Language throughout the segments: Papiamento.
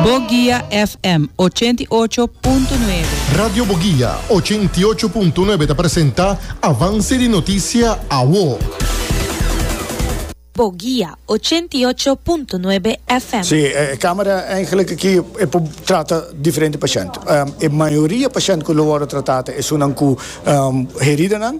Boguia FM ochenta i ocho punto nuebe. Radio Boguia ochenta i ocho punto nuebe ta presenta Avance di Noticia Awo. Boguia ochenta i ocho punto nuebe FM. Sí, e camera eigenlijk aki e por trata diferente pashènt. E mayoria pashènt ku lo wòrdu tratá ta esunnan ku heridanan,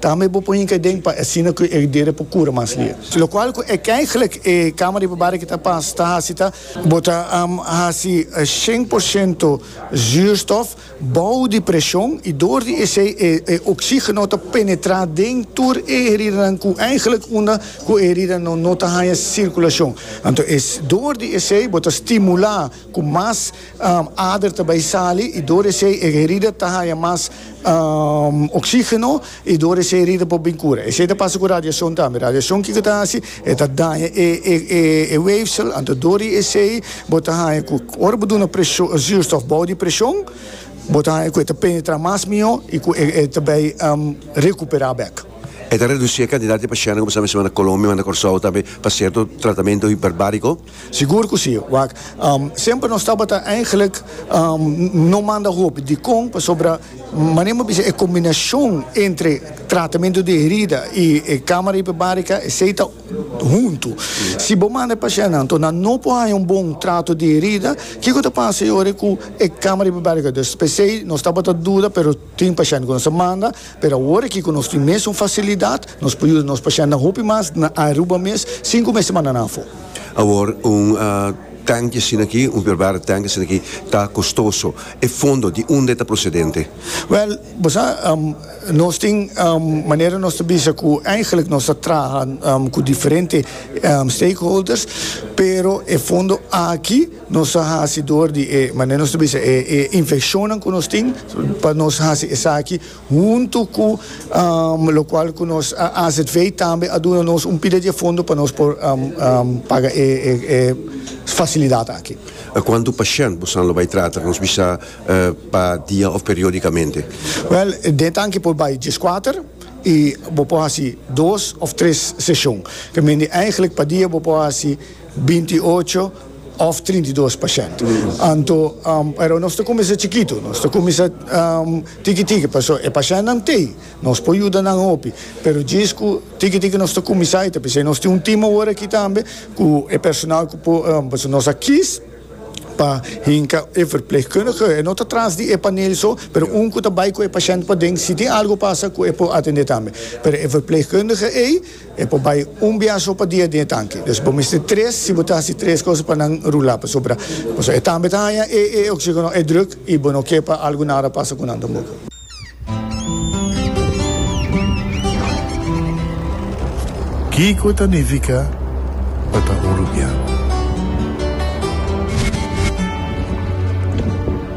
Tambe bo por hinca den pa asina cu e heridera por cura mas lia. Locual cu e caiglec e cama riba barri que ta pas ta haci ta. Bo ta haci cien por ciento zuurstof bao di presion y door di esey e oxigeno ta penetra den tur e heridanan cu caiglec unda cu e heridanan no ta haya circulacion. Anto door di esey bo ta stimula. Ku mas ader ta bai sali i dor esei e herida ta haña mas oksígeno i dor esei herida por bin kura. Esei ta pasa ku radiashon tambe. Radiashon kiko ta hasi? E ta daña e wéfsel, anto dor di esei bo ta haña ku ora bo duna zuurstof bou di preshon bo ta haña ku e ta penetrá mas mihó i ku e ta bai rekuperá bèk. E ta redusí e kantidat di pashentenan ku bo sa mester manda Kolombia, manda Kòrsou tambe pa sierto tratamentu hiperbáriko. Sigur cu si, wak. Semper nos tabata eigenlijk no manda hopi. Dicon? Pasobra manera mi a bisa e combinacion entre tratamento di herida y e camara hiperbarica esey ta hunto. Si bo manda e pacientnan to nan no por haya un bon trato di herida, kico ta pasa e ora cu e camara hiperbarica ta dus? Pesey nos tabata duda pero. Tin pashènt ku nos ta manda, pero awor aki ku nos tin mes un fasilidat, nos por yuda nos pashèntnan hopi mas na Aruba mes sin ku mester mandanan afó. Awor un tènki asina aki, un verbare tènki asina aki ta kostoso. E fondo di unda e ta prosedente? Wèl, bo sa, nos tin manera nos ta bisa ku eigelik nos ta traha ku diferente stakeholders, pero e fondo aki, Nos a hasi dor di e, manera nos ta bisa, e infeccionnan cu nos tin, pa nos hasi esaki huntu cu locual cu nos azv tambe a duna nos un pila di e fondo pa nos por paga e facilidad aki. A cuantu pashent bosan lo bay trata? Nos bisa pa dia of periodicamente? Wel, den tanki por bay diescuater y bo por hasi dos of tres sesion. Ta mindi, eigenlijk pa dia bo por hasi binti ocho. òf trinta i dos pa shènt. Anto, pero nos ta kuminsá chikitu, nos ta kuminsá tiki tiki, pasobra e pashèntnan t'ei, nos por yuda nan hopi, pero djis ku tiki tiki nos ta kuminsá i ta p'esei nos tin un tim awor aki tambe ku e personal ku por, pasobra nos a kis pa hinka e verplegkundige, e no ta tras di e panel so, pero un ku ta bai ku e pashènt paden, si tin algu pasa ku e por atendé tambe, pero e verplegkundige ei. E por bai un biaha so pa dia den e tanki. Des bo mester tres si bo ta hasi tres cosa pa nan rula, pasobra pasobra e tambe ta haña e e oxigeno, e druk, i bo no ke pa algu nara pasa ku nan tampoco. Kiko ta nifiká pa ta un rubian?